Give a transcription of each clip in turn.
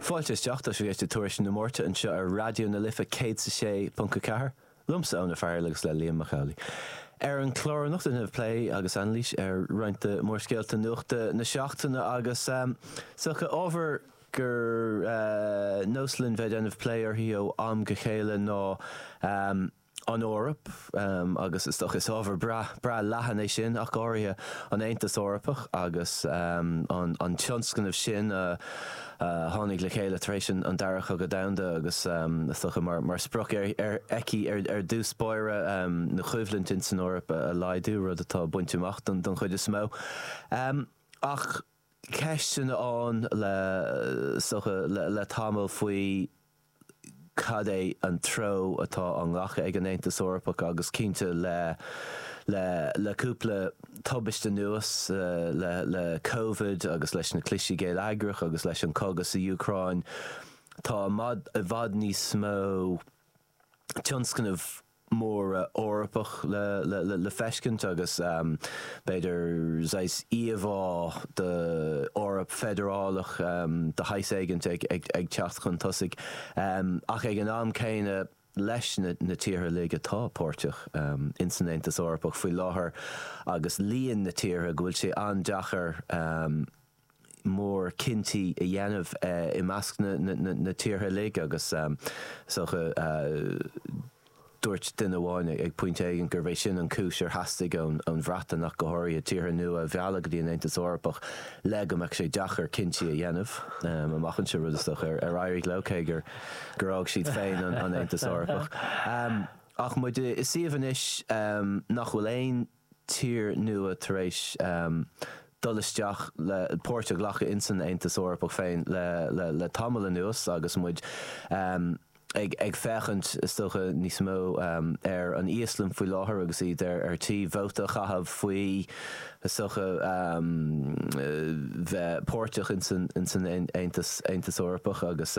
Fáilte isteach, tá sibh ag éisteacht le Tuairisc na Máirte anseo ar Raidió na Life 106.4, liomsa Eoin Ó Fearghaíl agus le Liam Mac Amhlaigh. Ar an chlár anocht déanfaidh muid plé agus anailís ar roinnt de mhórscéalta nuachta na seachtaine agus is dócha ábhar gur nós linn bheith ag déanamh plé uirthi ó am go chéile ná an Eoraip agus is dócha is ábhar breá leathan é sin ach go háirithe an Aontas Eorpach agus an tionscnamh sin a tháinig le chéile tar éis an Dara Cogadh Domhanda agus is dócha mar sprioc aici ar dtús báire na coimhlintí insan Eoraip a laghdú, rud atá bainte amach don chuid is mó ach. ceisteanna ann is dócha le tamall faoi cad é an treo atá á nglacadh ag an Aontas Eorpach agus cinnte le le cúpla tubaist anuas, le Covid agus leis na cliseadh géilleagrach agus leis an gcogadh sa Úcráin, tá i bhfad níos mó tionscnamh móra Eorpach le le feiscint agus b'fhéidir saghas íomhá d'Eoraip feidearálach de shaghas éigint ag teacht chun tosaigh, ach ag an am céanna leis na tíortha uilig atá páirteach insan Aontas Eorpach faoi láthair agus líon na tíortha go bhfuil sé an-deachair, mórchinntí a dhéanamh i measc na tíortha uilig agus is dócha dúirt duine amháin ag pointe éigin gurbh é sin an cúis ar theastaigh ón Bhreatain ach go háirithe, tíortha nua a mhealladh go dtí an Aontas Eorpach le go mbeadh sé deacair cinntí a dhéanamh amach anseo, rud is dócha ar éirigh leo, cé gur fhág siad féin an Aontas Eorpach. Ach muid i suíomh anois nach bhfuil aon. tír nua tar éis dul isteach le páirt a ghlacadh in san Aontas Eorpach féin le tamall anuas agus muid ag ag féachaint is dócha níos mó ar an Íoslainn faoi láthair agus iad ar tí vóta a chaitheamh faoi is dócha bheith páirteach in san Aontas Eorpach agus.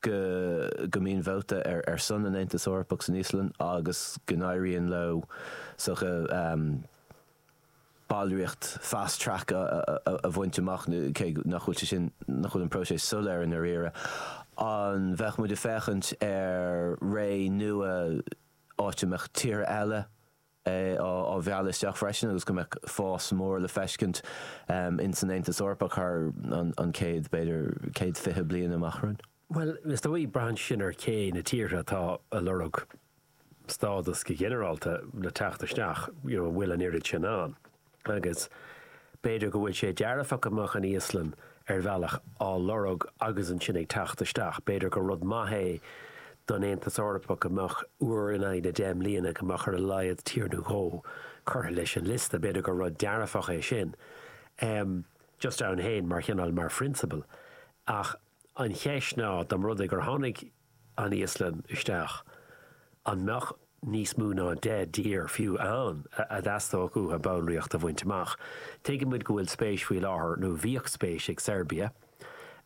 go go mbíonn vóta ar ar son an Aontas Eorpach san Íoslainn agus go n-éiríonn leo is dócha ballraíocht fast track a bhaint amach cé nach bhfuil sé sin nach bhfuil an próiseas soiléir i ndairíre. An mbeidh muid ag féachaint ar ré nua áit a mbeadh tíortha eile, é á mhealladh isteach freisin agus go mbeadh fás mór le feiscint ins an Aontas Eorpach thar an chéad, b'fhéidir, céad fiche bliain amach romhainn. Bhuel, is dóigh, braitheann sin ar cé na tíortha atá a' lorg stádas go ghinearálta le teacht isteach, you know, an bhfuil an oiread sin ann. Agus b'fhéidir go bhfuil sé dearfach go mbeadh an Íoslainn ar bhealach á lorg agus ansin ag teacht isteach. B'fhéidir gur rud maith é don Aontas Eorpach go mbeadh, uair in aghaidh na deich mbliana, go mbeadh ar a laghad tír nó dhó curtha leis an liosta. B'fhéidir gur rud dearfach é sin. Just ann féin mar chineál, mar phrionsabal. Ach an cheist ná, dá mba rud é gur tháinig an Íoslainn isteach, an mbeadh níos mó ná deich dtír fiú ann a dteastódh uathu ballraíocht a bhaint amach? Tuigeann muid go bhfuil spéis faoi láthair, nó bhíodh spéis ag Seirbia,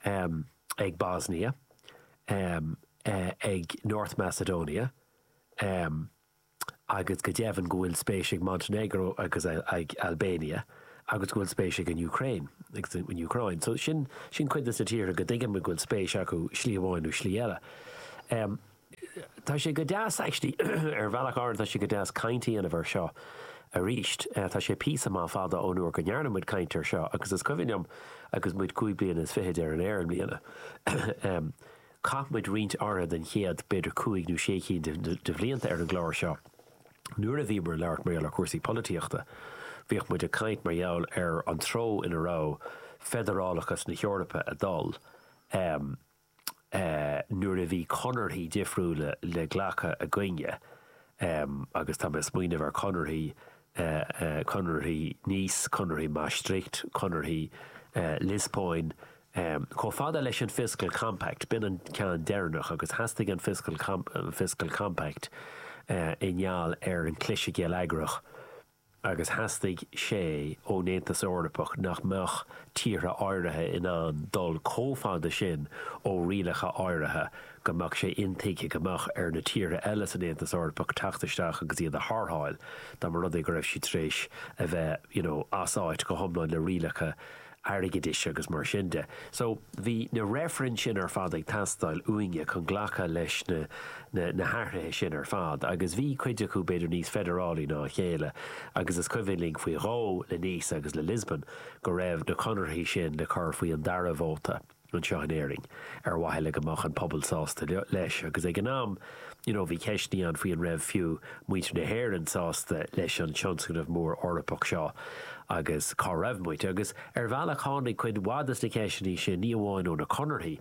ag Bosnia, ag North Macedonia, agus go deimhin go bhfuil spéis ag Montenegro agus ag Albania agus go bhfuil spéis ag an Ukraine, ag an Úcráin. So sin cuid de na tíortha go dtuigeann muid go bhfuil spéis acu slí amháin nó slí eile. Em, tá sé go deas actually, ar bhealach áirithe tá sé go deas caint a dhéanamh air seo arís. Eh, tá sé píosa maith fada ón uair go ndearna muid caint air seo agus is cuimhin liom agus muid cúig bliana is fichead ar an aer i mbliana, em, Chaith muid roinnt áirithe den chéad, b'fhéidir cúig nó sé cinn de bhlianta ar an gclár seo nuair a bhí muid ag labhairt mar gheall ar chúrsaí polaitíochta. Bhíodh muid ag caint mar gheall ar an treo ina raibh feidearálachas na hEorpa ag dul nuair a bhí conarthaí difriúla le glacadh againne agus tá mé ag smaoineamh ar chonarthaí Conarthaí Nice, Conarthaí Maastricht, Conarthaí eh Liospóin, chomh fada leis an Fiscal Compact, b'in an ceann deireanach, agus theastaigh an Fiscal Compact i ngeall ar an chliseadh geilleagrach agus theastaigh sé ón Aontas Eorpach nach mbeadh tíortha áirithe in ann dul chomh fada sin ó rialacha áirithe. go mbeadh sé intuigthe go mbeadh ar na tíortha eile san Aontas Eorpach teacht isteach agus iad a tharrtháil dá mba rud é go raibh siad tar éis a bheith you know as áit go hiomlán le rialacha airgeadais agus mar sin de. So, bhí na reifrinn sin ar fad ag teastáil uainne chun glacadh leis na, na, na hathruithe sin ar fad agus bhí cuid acu b'fhéidir níos feidearálaí ná a chéile agus is cuimhin linn faoi dhó le Nice agus le Lisbon go raibh na conarthaí sin le cur faoi an dara vóta. anseo in Éirinn ar mhaithe le go mbeadh an pobal sásta leis agus ag an am you know bhí ceisteannaí ann faoi an raibh fiú muintir na hÉireann sásta leis an tionscnamh mór Eorpach seo agus cá raibh muid agus ar bhealach tháinig cuid mhaith de na ceisteannaí sin ní amháin ó na conarthaí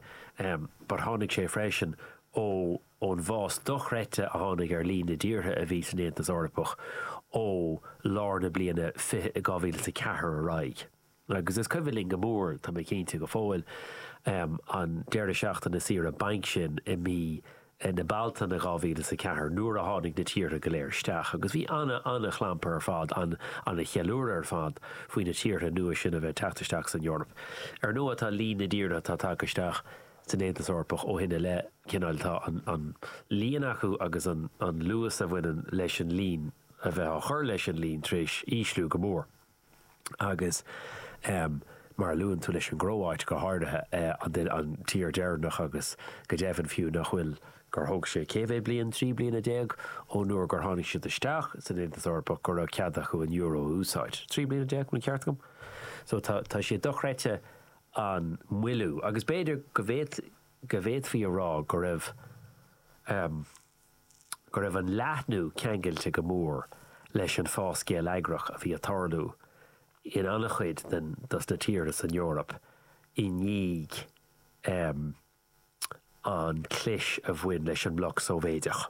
em but tháinig sé freisin ó ón bhfás dochreidte a tháinig ar líon na dtíortha a bhí san Aontas Eorpach ó lár na bliana fiche 2004 ar aghaidh. Agus is cuimhin linn go maith, tá mé cinnte, go fóill, an deireadh seachtaine saoire bainc sin i mí na Bealtaine 2000 is a ceathair, nuair a tháinig na tíortha go léir isteach. Agus bhí ana, ana chlampar ar fad, ana, ana cheiliúradh ar fad, faoi na tíortha nua sin a bheith ag teacht isteach san Eoraip. Ar ndóigh, tá líon na dtíortha atá tagtha isteach san Aontas Eorpach ó shin i leith, cineál, tá an líon acu agus an luas a bhaineann leis an líon a bheith á chur leis an líon tar éis ísliú go mór. agus mar a luann tú leis an gCróit go háirithe, an tír deireanach agus go deimhin fiú nach bhfuil gur thóg sé cé mhéad bliain, trí bliana déag ó nuair gur tháinig siad isteach san Aontas Eorpach go raibh cead acu an euro a úsáid. Trí bliana déag, an ceart agam? So tá sé dochreidte an moilliú agus b'fhéidir go bhféadfaí a rá go raibh. go raibh an leathnú ceangailte go mór leis an fás geilleagrach a bhí ag tarlú in an-chuid den dos na tíortha san Eoraip i ndiaidh an chlis a bhain leis an mbloc Sóivéideach.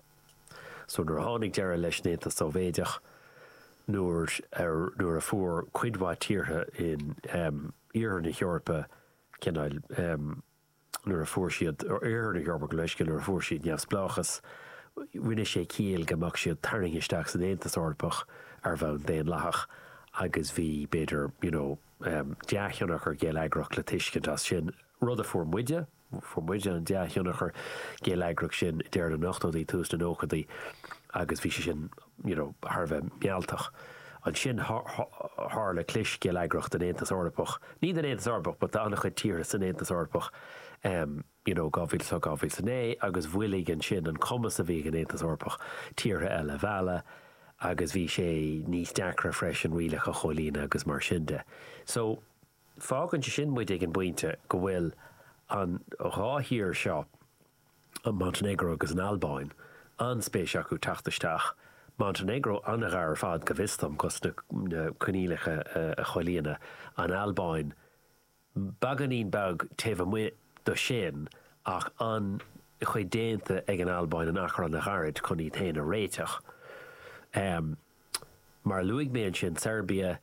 So nuair a tháinig deireadh leis an Aontas Sóivéideach, nuair a nuair a fuair cuid mhaith tíortha in Iarthar na hEorpa cineál. nuair a fuair siad Oirthear na hEorpa gabh mo leithscéal, nuair a fuair siad neamhspleáchas, rinne sé ciall go mbeadh siad tarraingthe isteach san Aontas Eorpach ar bhonn daonlathach agus bhí, b'fhéidir, you know, dea-thionchar geilleagrach le tuiscint as sin, rud a fuair muide, fuair muide an dea-thionchar geilleagrach sin i deireadh na n-ochtóidí, tús na nóchaidí agus bhí sé sin. you know, thar a bheith mealltach. Ansin tharla clis geilleagrach den Aontas Eorpach, ní den Aontas Eorpach but d'an-chuid tíortha san Aontas Eorpach, em, you know, 2008, 2009 agus mhoilligh ansin an cumas a bhí ag an Aontas Eorpach tíortha eile a mhealladh agus bhí sé níos deacra freisin rialacha a chomhlíonadh agus mar sin de. So, fágann sé sin muid ag an bpointe go bhfuil an dhá thír seo, an Montainéagró agus an Albáin, an-spéis acu teacht isteach, Montainéagró an-ghar ar fad, go bhfios dom, cos na coinníollacha a chomhlíonadh, an Albáin beagáinín beag taobh amuigh do sin ach an-chuid déanta ag an Albáin in achar an-ghairid chun iad féin a réiteach. Mar a luaigh mé ansin, Seirbia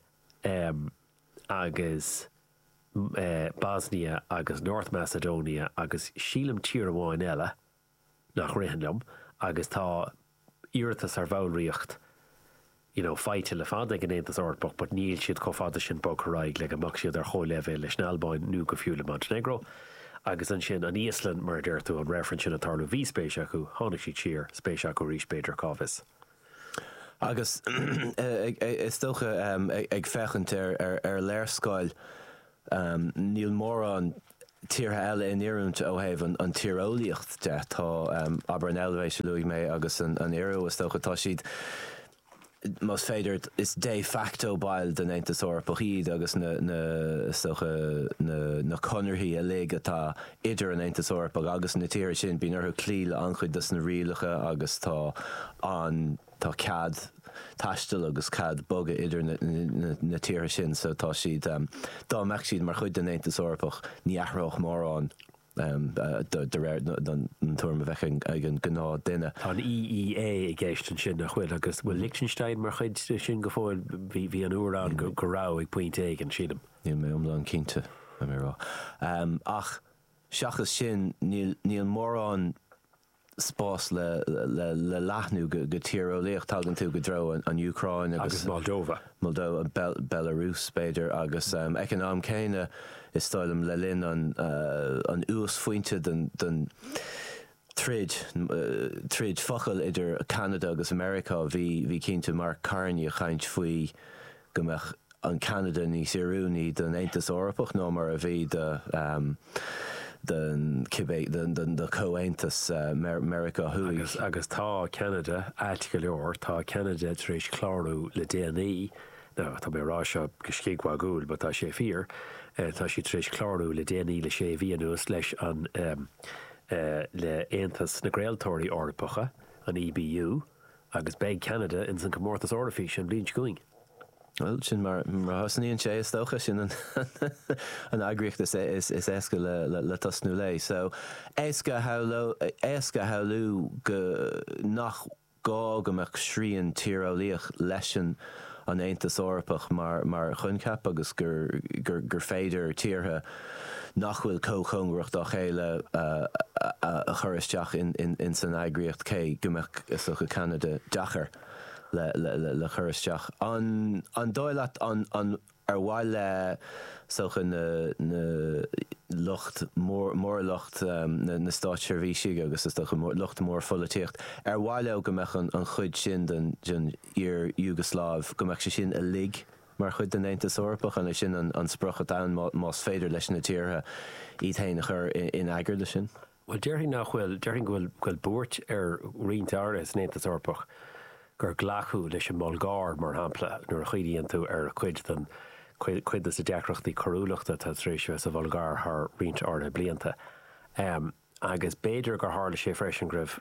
agus. Bosnia agus North Macedonia agus sílim tír amháin eile nach ritheann liom agus tá iarratas ar bhallraíocht you know faighte le fada ag an Aontas Eorpach but níl siad chomh fada sin bogtha ar aghaidh le go mbeadh siad ar chomhleibhéal leis an Albáin nó go fiú le Montenegro. Agus ansin an Íoslainn mar a deir tú an reifreann sin ag tarlú bhí spéis acu, tháinig siad siar, spéis acu arís b'fhéidir cá bhfios. Agus is dócha ag féachaint ar léarscáil níl mórán tíortha eile in oiriúint ó thaobh an tíreolaíocht de. Tá, abair an Eilvéis a luaigh mé agus an Iorua is dócha, tá siad, más féidir, is de facto baill den Aontas Eorpach iad agus na, is dócha, na conarthaí uilig atá idir an Aontas Eorpach agus na tíortha sin, bíonn orthu cloí le an-chuid dos na rialacha agus tá an, tá cead taistil agus cead bogadh idir na tíortha sin so tá siad, dá mbeadh siad mar chuid den Aontas Eorpach, ní athródh mórán de réir an tuairim a bheadh ag an ngnáthdhuine. Tá an EEA i gceist ansin nach bhfuil agus an bhfuil Lichtinstéin mar chuid de sin go fóill, bhí an Íoslainn go raibh ag pointe éigin sílim. Níl mé iomlán cinnte, caithfidh mé a rá. Ach seachas sin, níl mórán spás le leathnú go tíreolaíoch. Tagann tú go dtreo an Úcráin agus Moldova, Belarus b'fhéidir, agus ag an am céanna, is dóigh liom, le linn an uasphointe don throid, troid focal idir Ceanada agus Meiriceá, bhí, bhí cinnte Mark Carney ag caint faoi go mbeadh an Ceanada níos oiriúnaí don Aontas Eorpach ná mar a bhí do, don cibé, don, do Comhaontas Meiriceá Thuaidh. Agus, agus tá Ceanada aisteach go leor, tá Ceanada tar éis clárú le déanaí, nó tá mé ag rá seo go scigmhagúil but tá sé fíor, tá siad tar éis clárú le déanaí le sé mhí anuas leis an, le hAontas na gCraoltóirí Eorpacha, an EBU, agus beidh Ceanada ins an Comórtas Eoraifíse an bhliain seo chugainn. Bhuel, sin mar a thosnaíonn sé, is dócha. Sin an eagraíocht is éasca le tosnú léi. So, éasca a shamhlú go nach. gá go mbeadh srian tíreolaíoch leis an, an Aontas Eorpach mar choincheap agus gur féidir tíortha nach bhfuil chomh cóngarach dá chéile a chur isteach ins an eagraíocht cé go mbeadh is dócha Ceanada deacair le cur isteach. An dóigh leat an Ar mhaith le, is dócha, na lucht mór, mór lucht na státseirbhísigh agus is dócha lucht mór pholaitíocht, ar mhaith leo go mbeadh an chuid sin den iar-Iúgslaiv, go mbeadh sé sin uilig mar chuid den Aontas Eorpach? An é sin an sprioc atá ann más féidir leis na tíortha iad féin a chur in eagar leis sin? Bhuel, déarfainn nach bhfuil, déarfainn go bhfuil, go bhfuil buairt ar roinnt áirithe san Aontas Eorpach gur glacadh leis an mBulgáir, mar shampla, nuair a chuimhníonn tú ar chuid den, cuid dos na deacrachtaí coiriúlachta atá tar éis a bheith sa Bhulgáir thar roinnt áirithe blianta. Agus b'fhéidir gur tharla sé freisin go raibh.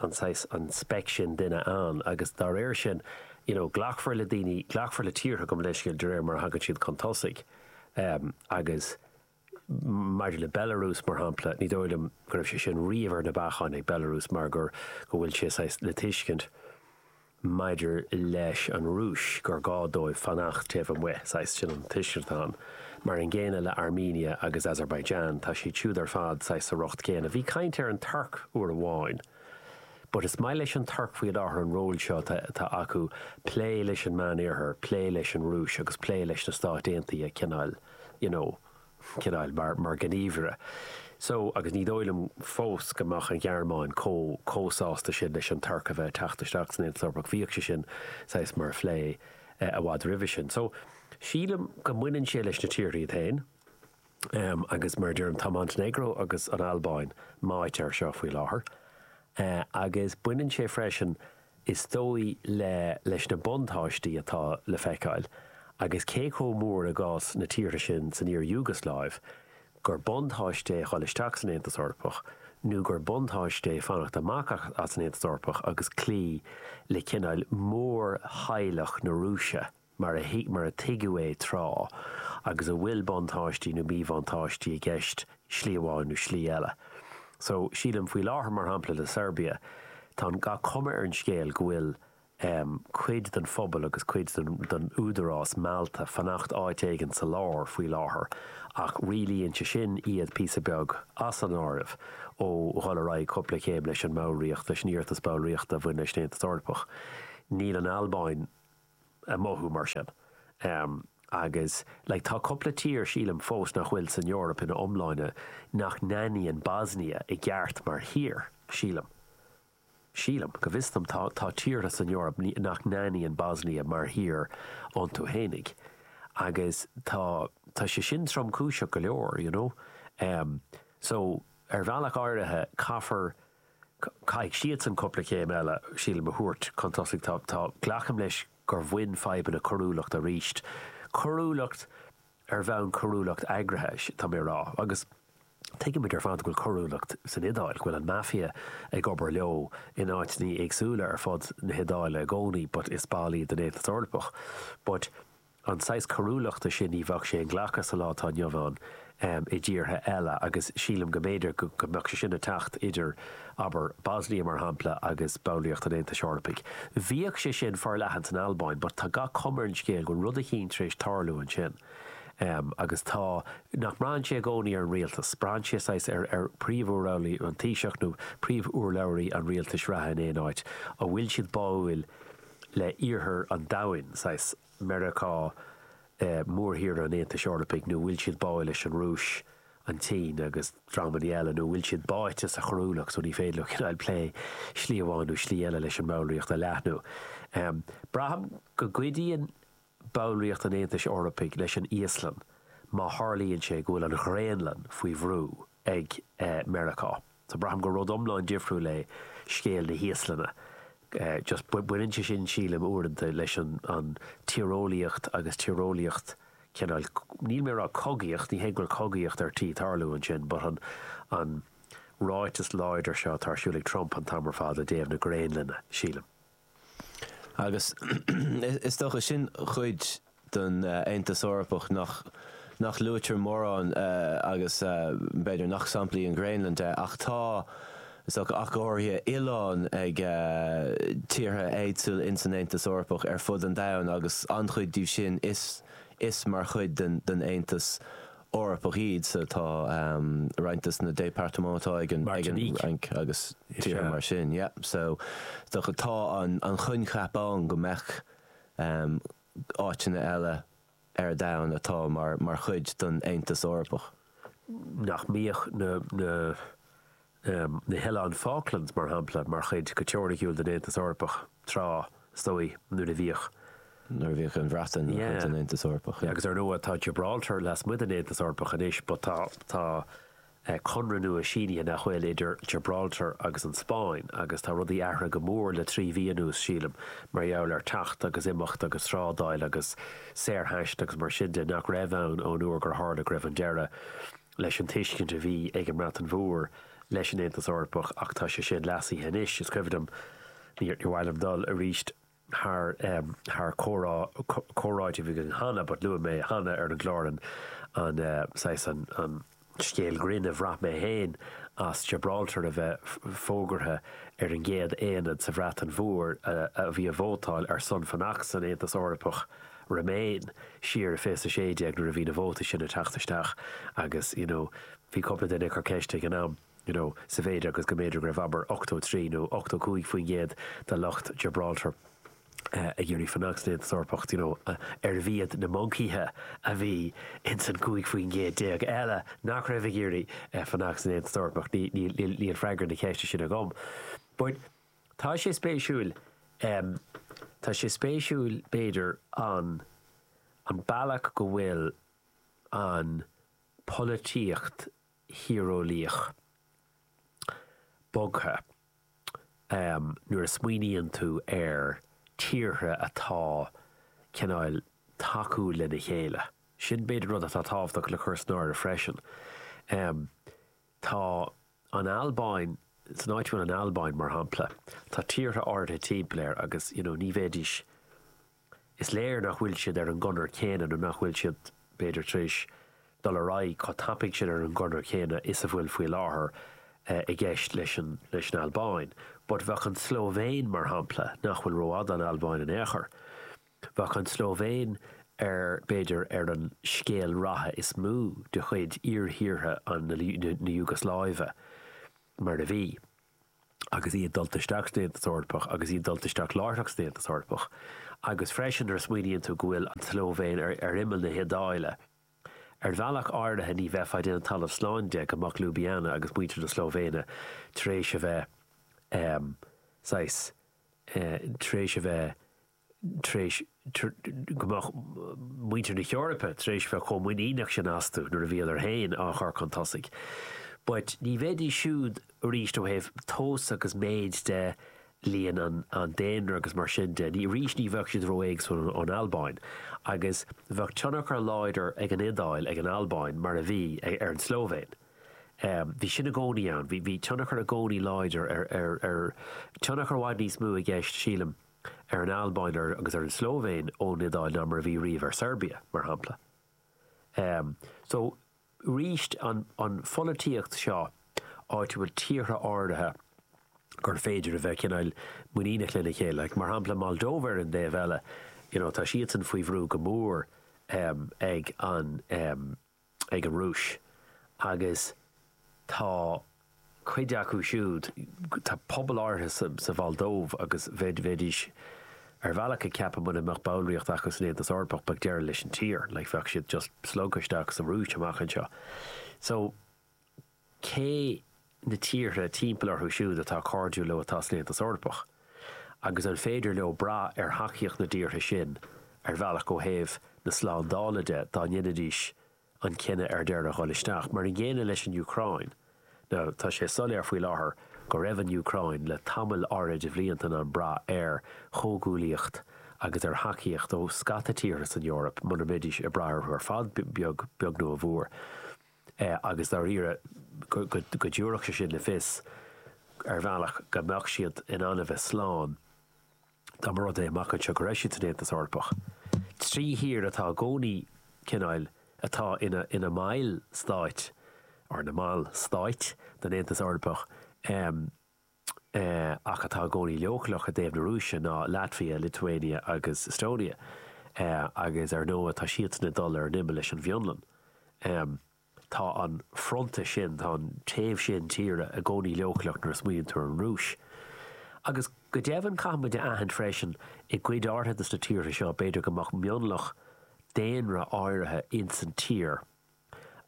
an saghas, an speic sin duine ann agus dá réir sin you know glacfar le daoine, glacfar le tíortha gabh mo leithscéal de réir mar a thagann siad chun tosaigh em agus maidir le Belarus mar shampla ní dóigh liom go raibh sé sin riamh ar na bacáin ag Belarus mar gur go bhfuil sé saghas le tuiscint maidir leis an Rúis, gur gá dóibh fanacht taobh amuigh, saghas, sin an tuiscint atá ann. Mar an gcéanna le Armenia agus Azerbaijan, tá siad siúd ar fad saghas sa riocht céanna. Bhí caint ar an Tuirc uair amháin. But is maith leis an Tuirc faoi láthair an ról seo atá acu ag plé leis an Meánoirthear, plé leis an Rúis agus plé leis na Stáit Aontaithe cineáil, you know. chineál mar ghníomhaire. So, agus ní dóigh liom fós go mbeadh an Ghearmáin chomh, chomh sásta sin leis an Tuirc a bheith ag teacht isteach san Aontas Eorpach, bhíodh sé sin saghas mar phlé i bhfad roimhe sin. So, sílim go mbaineann sé leis na tíortha iad féin. Em, agus mar a deirim, tá Montainéagró agus an Albáin meáite air seo faoi láthair. Eh, agus baineann sé freisin Is dóigh le leis na buntáistí atá le feiceáil, agus cé chomh mór i gcás na tíortha sin san iar-Iúgasláiv, gur buntáiste é dhul isteach san Aontas Eorpach nó gur buntáiste é fanacht amach as an Aontas Eorpach agus cloí le cineáil mórtheaghlach na Rúise. mar a thuig, mar a tuigeadh é tráth, agus a bhfuil buntáistí nó míbhuntáistí i gceist slí amháin nó slí eile. So, sílim, faoi láthair, mar shampla, le Seirbia, tá gach cuma ar an scéal go bhfuil ehm, cuid den phobal agus cuid den, den údarás meallta fanacht áit éigin sa lár faoi láthair ach rialaíonn sé sin iad píosa beag, as an áireamh, ó dhul ar aghaidh cúpla céim leis an mballraíocht, leis an iarratas ballraíochta a bhain leis an Aontas Eorpach. Níl an Albáin. ag mothú mar sin agus like tá cúpla tír sílim fós nach bhfuil san Eoraip ina iomláine nach n-aithníonn Bosnia i gceart mar thír, sílim. Sílim, go bhfios dom tá tá tíortha san Eoraip nach n-aithníonn Bosnia mar thír iontu fhéinig agus tá tá sé sin tromchúiseach go leor you know. So ar bhealach áirithe caithfear Caithfidh siadsan cúpla céim eile, sílim, a thabhairt chun tosaigh. Tá, tá, glacaim leis gur bhain fadhbanna coiriúlacht arís. Coiriúlacht ar bhonn, coiriúlacht eagraithe, tá mé a rá. Agus tuigimid ar fad go bhfuil coiriúlacht san Iodáil, go bhfuil an Mafia ag obair leo in áiteannaí éagsúla ar fud na hIodáile i gcónaí but is ball iad den Aontas Eorpach. But. An saghas coiriúlachta sin ní bheadh sé inghlactha sa lá atá inniu ann i dtíortha eile agus sílim go mb'fhéidir go mbeadh sé sin ag teacht idir, abair, Bosnia, mar shampla, agus ballraíocht an Aontais Eorpaigh. Bhíodh sé sin forleathan san Albáin but tá gach cuma ar an scéal go bhfuil rud eicínt tar éis tarlú ansin agus tá, nach mbraitheann sé i gcónaí ar an rialtas, braitheann sé saghas ar príomhurlabhraí, an Taoiseach nó príomhurlabhraí an rialtais reatha in aon áit, an bhfuil siad báúil le iarthar an domhain, saghas Meiriceá, mórthír an Aontais Eorpaigh, nó bhfuil siad báidh leis an Rúis, an tSín agus dreamanna eile, nó bhfuil siad báite sa choiriúlacht, so ní féidir leo cineál plé slí amháin nó slí eile leis an mballraíocht a leathnú. Braithim go gcuidíonn ballraíocht an Aontais Eorpaigh leis an Íoslainn má tharlaíonn sé go bhfuil an Ghraonlainn faoi bhrú ag Meiriceá. So braithim gur rud iomlán difriúil é scéal na hÍoslainne. Just baineann sé sin, sílim, uaireanta leis an tíreolaíocht agus tíreolaíocht cineál, níl mé ag rá cogaíocht, ní hé go bhfuil cogaíocht ar tí tarlú ansin but an an ráiteas láidir seo atá ar siúl ag Trump an t-am ar fad i dtaobh na Graonlainne, sílim. Agus is dócha sin cuid den Aontas Eorpach nach, nach luaitear mórán agus b'fhéidir nach sampla í an Ghraonlainn de ach tá, is dócha, ach go háirithe, oileáin ag tíortha éagsúla ins an Aontas Eorpach ar fud an domhain agus an-chuid díobh sin is mar chuid den Aontas Eorpach iad sa, tá roinnt de na départements atá ag an Fhrainc agus tíortha mar sin, yeah. So, d'fhéadfadh, tá an coincheap ann go mbeadh áiteanna eile ar domhan atá mar chuid den Aontas Eorpach. nach mbeadh na, na, na hOileáin Falklands, mar shampla, mar chuid, go teoiriciúil, den Aontas Eorpach, tráth, is dóigh, nuair a bhíodh. nuair a bhíodh an Bhreatain ina cuid den Aontas Eorpach. Agus, ar ndóigh, tá Gibraltar lasmuigh den Aontas Eorpach anois, but tá, tá conradh nua sínithe, nach bhfuil, idir Gibraltar agus an Spáinn, agus tá rudaí athraithe go mór le trí mhí anuas, sílim, mar gheall ar teacht agus imeacht agus trádáil agus saorthaisteal agus mar sin de, nach raibh ann ón uair gur tharla go raibh deireadh. leis an tuiscint a bhí ag an mBreatain Mhór leis an Aontas Eorpach ach tá sé sin leasaithe anois. Is cuimhin liom, níor mhaith liom dul arís thar thar comhrá, comhráite a bhí againn cheana but luaigh mé cheana ar an gclár an an saghas an an scéal grinn a bhraith mé féin as Gibraltar a bheith fógartha ar an gcéad aonad sa Bhreatain Mhór a bhí, a vótáil ar son fanacht san Aontas Eorpach Remain, siar i fiche sé déag nuair a bhí na vótai sin ag teacht isteach agus you know bhí cúpla duine ag cur ceiste ag an am you know sa mhéid is go mb'fhéidir go raibh abair 83 nó 85% de lucht Gibraltar ag iarraidh fanacht san Aontas Eorpach d'you know arbh iad na moncaíthe a bhí ins an 15% eile nach raibh ag iarraidh fanacht san Aontas Eorpach. Níl freagra na ceiste sin agam but Tá sé spéisiúil, em, tá sé spéisiúil b'fhéidir an, an bealach go bhfuil an pholaitíocht thíreolaíoch bogtha, em, nuair a smaoiníonn tú ar tíortha atá cineál tacúil lena chéile. Sin b'fhéidir rud atá tábhachtach le cur san áireamh freisin. Em, Tá an Albáin, san áit a bhfuil an Albáin, mar shampla, tá tíortha áirithe timpeall air agus, you know, ní bheidís, is léir nach bhfuil siad ar an gconair chéanna nó nach bhfuil siad, b'fhéidir, tar éis dul ar aghaidh chomh tapaidh sin ar an gconair chéanna is a bhfuil faoi láthair i gceist leis an, leis an Albáin. But bheadh an tSlóivéin, mar shampla, nach bhfuil rófhada ón Albáin in aon chor, Bheadh an tSlóivéin ar, b'fhéidir, ar an scéal ratha is mó de chuid iarthíortha na Iúgasláive, mar a bhí, agus iad dulta isteach san Aontas Eorpach, agus iad dulta isteach láithreach san Aontas Eorpach. Agus freisin, nuair a smaoiníonn tú go bhfuil an tSlóivéin ar imeall na hIodáile, ar bhealach áirithe ní bheifeá ag déanamh talamh slán de go mbeadh Ljubljana agus muintir na Slóivéine tar éis a bheith, saghas, tar éis a bheith, tar éis, go mbeadh muintir na hEorpa tar éis bheith chomh muiníneach sin astu nuair a bhíodar féin á chur chun tosaigh. But ní bheidís siúd arís ó thaobh tomhas agus méid de, líon an daonra agus mar sin de, ní, arís ní bheadh siad ró-éagsúil ón Albáin. Agus bheadh tionchar láidir ag an Iodáil, ar an Albáin, mar a bhí, ar an Slóivéin. Bhí sin i gcónaí ann, bhí, bhí tionchar i gcónaí láidir ar, ar, ar, tionchar i bhfad níos mó i gceist, sílim, ar an Albáin agus ar an tSlóivéin ón Iodáil ná mar a bhí riamh ar Seirbia, mar shampla. So, arís, an pholaitíocht seo áitiúil, tíortha áirithe gur féidir a bheith cineál muiníneach lena chéile, mar shampla Moldóva ar an dtaobh eile, you know, tá siadsan faoi bhrú go mór ag an. ag an Rúis agus tá cuid acu siúd, tá pobal áirithe sa Mholdóiv agus bheidís ar bhealach ag ceapadh muna mbeadh ballraíocht acu san Aontas Eorpach bheadh deireadh leis an tír, like bheadh siad just slogtha isteach sa Rúis amach anseo. So. cé na tíortha timpeall orthu siúd atá cairdiúil leo atá san Aontas Eorpach agus an féidir leo brath ar thacaíocht na dtíortha sin ar bhealach ó thaobh na slándála de dá ndéanfaidís an cinneadh ar deireadh dhul isteach. Mar an gcéanna leis an Úcráin. Now, tá sé soiléir faoi láthair go raibh an Úcráin le tamall áirid de bhlianta in ann brath ar chomhghuaillíocht agus ar thacaíocht ó scata tíortha san Eoraip muna mbeidís ag brath orthu ar fad a bheag nó a mhór. agus dáiríre go dtiúrfadh sé sin le fios ar bhealach go mbeadh siad in ann a bheith slán dá mba rud é amach anseo go raibh siad san Aontas Eorpach. Trí thír atá i gcónaí cineáil atá ina mbaill stáit, or na mball stáit, den Aontas Eorpach. ach atá i gcónaí leochaileach i dtaobh na Rúise ná Latvia, Lithuania agus Estonia agus ar ndóigh tá siadsan ag dul ar an imeall leis an bhFionlainn. Tá an fronta sin, tá an taobh sin tíre i gcónaí leochaileach nuair a smaoiníonn tú ar an Rúis. Agus go deimhin caithfidh muid a aithint freisin i gcuid áirithe de na tíortha seo b'fhéidir go mbeadh mionlach daonra áirithe insan tír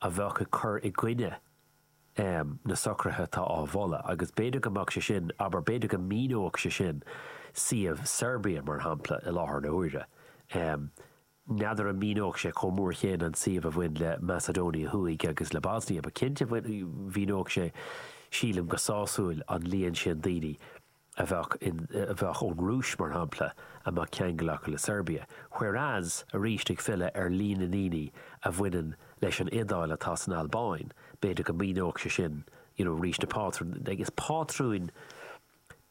a bheadh ag cur i gcoinne um na socruithe atá á mholadh, agus b'fhéidir go mbeadh sé sin, abair, b'fhéidir go mhíneodh sé sin suíomh Serbia, mar shampla, i láthair na huaire. um N'fheadar an míneodh sé chomh mór céanna an suíomh a bhain le Macedonia Thuaidh agus le Bosnia, but cinnte mhíneodh sé, sílim, go sásúil an líon sin daoine. a bheadh in, a bheadh ón Rúis mar shampla, a mbeadh ceangal acu le Seirbia. Whereas, arís ag filleadh ar líon na ndaoine a bhaineann leis an Iodáil atá san Albáin, b'fhéidir go míneodh sé sin you know arís na pátrúin, like is pátrúin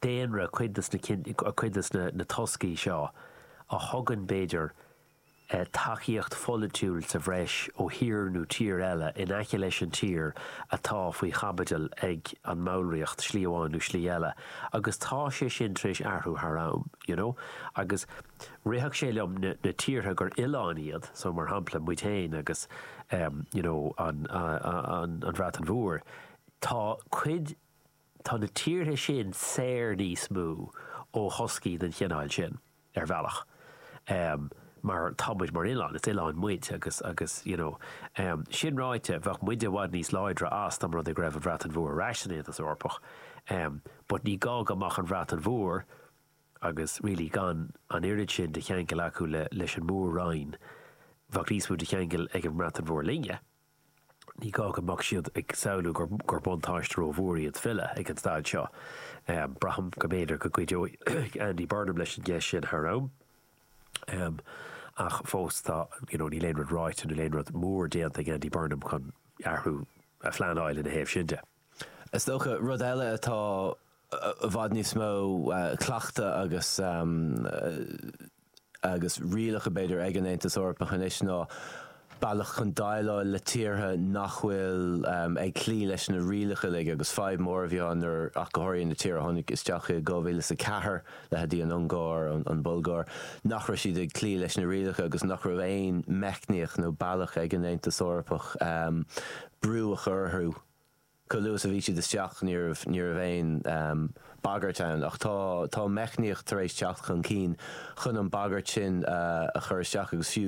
daonra cuid de na, cuid de na toscaí seo a thugann b'fhéidir, tacaíocht pholaitiúil sa bhreis ó thír nó tír eile in aice leis an tír atá faoi chaibidil ag an mballraíocht, slí amháin nó slí eile, agus tá sé sin tar éis athrú thar am, you know. Agus rithfeadh sé liom na tíortha gur oileáin iad, so mar shampla muid féin agus ehm, you know, an, an, an Bhreatain Mhór, tá cuid. Tá na tíortha sin saor níos mó ó thoscaí den chineál sin, ar bhealach, mar tá muid mar oileán, is oileán muid agus, agus, you know. Sin ráite, bheadh muide i bhfad níos láidre as dá mba rud é go raibh an Bhreatain Mhór ar ais san Aontas Eorpach, but ní gá go mbeadh an Bhreatain Mhór agus really gan an oiread sin de cheangal acu leis an Mór-Roinn, bheadh níos mó de cheangal ag an mBreatain Mhór linne. Ní gá go mbeadh siad ag samhlú gur buntáiste ró-mhór iad filleadh ag an staid seo. Braithim go mb'fhéidir go gcuideoidh Andy Burnham leis an gceist sin thar am, ach fós tá, you know, níl aon rud ráite, níl aon rud mór déanta ag Andy Burnham chun athrú a phleanáil ina thaobh sin de. Is dócha, rud eile atá i bhfad níos mó cleachta agus. agus rialacha, b'fhéidir, ag an Aontas Eorpach anois ná bealach chun déileáil le tíortha nach bhfuil ag cloí leis na rialacha uilig agus fadhb mhór a bhí ann ná ach go háirithe na tíortha a tháinig isteach i 2004, leithéidí an Ungáir, an Bhulgáir, nach raibh siad ag cloí leis na rialacha agus nach raibh aon meicníocht nó bealach ag an Aontas Eorpach brú a chur orthu. Chomh luath is a bhí siad isteach ní raibh aon bagairt ann ach tá, tá meicníocht tar éis teacht chun cinn chun an bagairt sin a chur isteach agus fiú